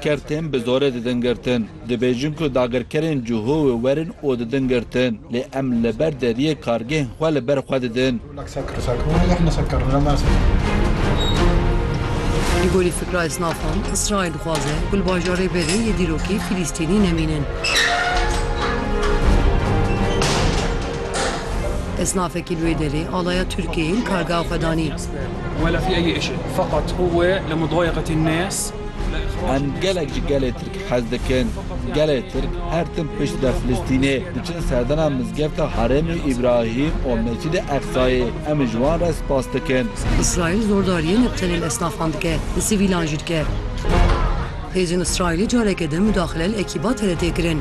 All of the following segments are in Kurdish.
Ker tên bi zorê didin girtin. Dibêjin ku dagirkerên Cihowê werin û didin girtin. Lê em li ber deriyê kargehên xwe li ber xwe didin. Li gorî fikra esnafan, Îsraîl dixwaze ku li bajarê berê yê dîrokê Fîlîstînî nemînin. Esnafekî li wê derê alaya Tirkiyeyê li kargeha xwe danî. Em gelek ji gelê Tirk hez dikin. Gelê Tirk her tim pişt be Filistînê diçin serdana Mizgefta Herêmê Îbrahîm û Mescîdê Eqsayê. Em ji wan re spas dikin. Îsraîl zordariyên li tenê li esnafan dike, li sivîlan jî dike. Hêzên Îsraîlî careke din mudaxile li ekîba TRT'ê kirin.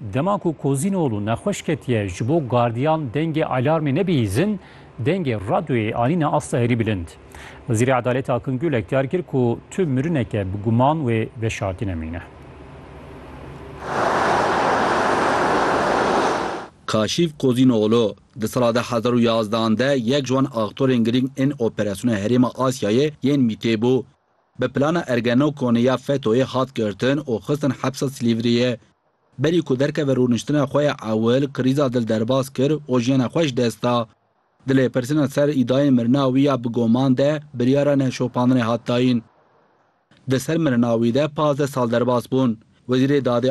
Dema ku Kozînoglû nexweş ketiye ji bo gardiyan dengê alarmê nebihîzin, dengê radyoyê anîne asta herî bilind. Wezîrê Edalêt Akın Gülek diyar kir ku tu mirineke bi guman wê veşartîne mîne. Kaşîf Kozînoglû, di sala de hezar û yazdan de yek ji wan aktorên girîng ên operasyona Herêma Asyayê yên MĪT'ê bû. Bi plana Ergenekonê ya FETÖ'yê hat girtin û xistin hepsa Silîvriyê. Berî ku derkeve rûniştina xwe ya ewil, krîza dil derbas kir û jiyana xwe ji dest da. Di lêpirsîna ser îdayên mirina wî ya bi goman de biryara neşopandinê hat dayîn. Di ser mirina wî de pazdeh sal derbas bûn. Wezîrê Dadê